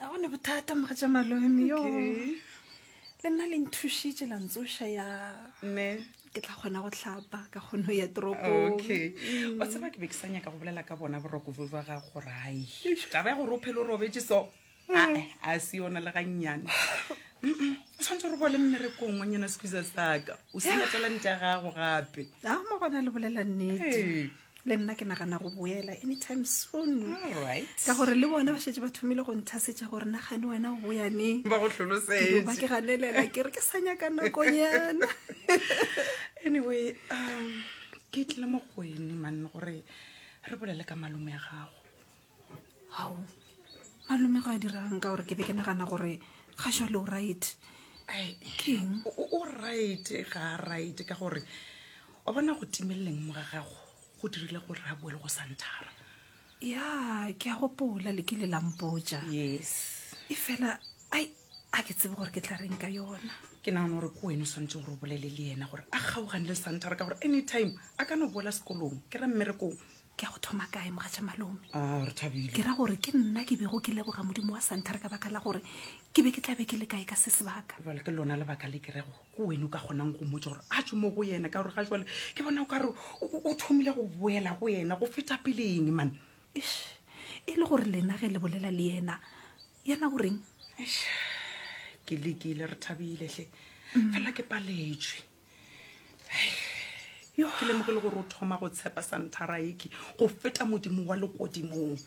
a gone bothata moga tša malome yo le nna le nthušitše la ntsoša ya ne ke tla kgona go tlhapa ka kgono ya toropong okay mm. wa tseba ke be ke sa nyaka go bolela ka bona boroko bo ba ga gore ai taba ya gore o phele o robetse so mm. a se yona le gannyane o tshwanetse gore bole mmerekong wa nyana sekiza saka o selatela nte ya gago gape a mo gona le bolela nnete le nna ke nagana go boela anytime soon ka gore le bone ba šetse ba thomile go nthasetša gore nagane wena o boyaneng ba go hlolosetba ke ganelela ke re ke sa nyaka nakonyana anyway um ke tlile mo go ene manne gore re bolele ka malome ya gago ao malome go a dirang ka gore ke be ke nagana gore ga jale o right keng o right ga a right ka gore wa bona go timeleleng mo ga gago go dirile gore a boele go santhara ya ke a gopola le kile la mpotsa yes e fela ai a ke tsebe gore ke tla reng ka yona ke nagana gore ke wene o tshwanetse gore o bolele le ena gore a kgaogane le santhara ka gore anytime a ka no boela sekolong ke ra mmerekong Ke a go thoma kae, Mogatša Malome? A, re thabile. Ke ra gore ke nna ke bego ke leboga Modimo wa Santhare ka baka la gore ke be ke tla be ke le kae ka se sebaka. Jwale ke lona lebaka le ke rego ke wene o ka kgonang go mmotša gore a tšwe mo go yena, ka gore ga jwale ke bona o ka re o thomile go boela go yena go feta peleng man. Eish, e le gore lena ge le bolela le yena, yena o reng? Eish, ke lekile, re thabile hle, fela ke paletšwe. yo ke lemoge le gore o thoma go tshepa santhara eke go feta modimo wa lekodimong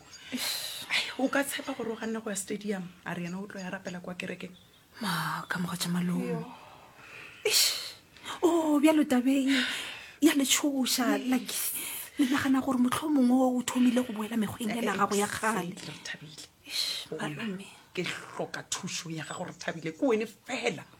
o ka tshepa gore o ganne go ya stadium a re yena o tlo ya rapela kwa kerekeng ma ka moga tša malomo o oh, bjalo tabeng ya letshoša like le nagana gore motlho mongwe o thomile go boela mekgweng ya nagago ya kgale ke hloka thušo ya gago re thabile ke wene fela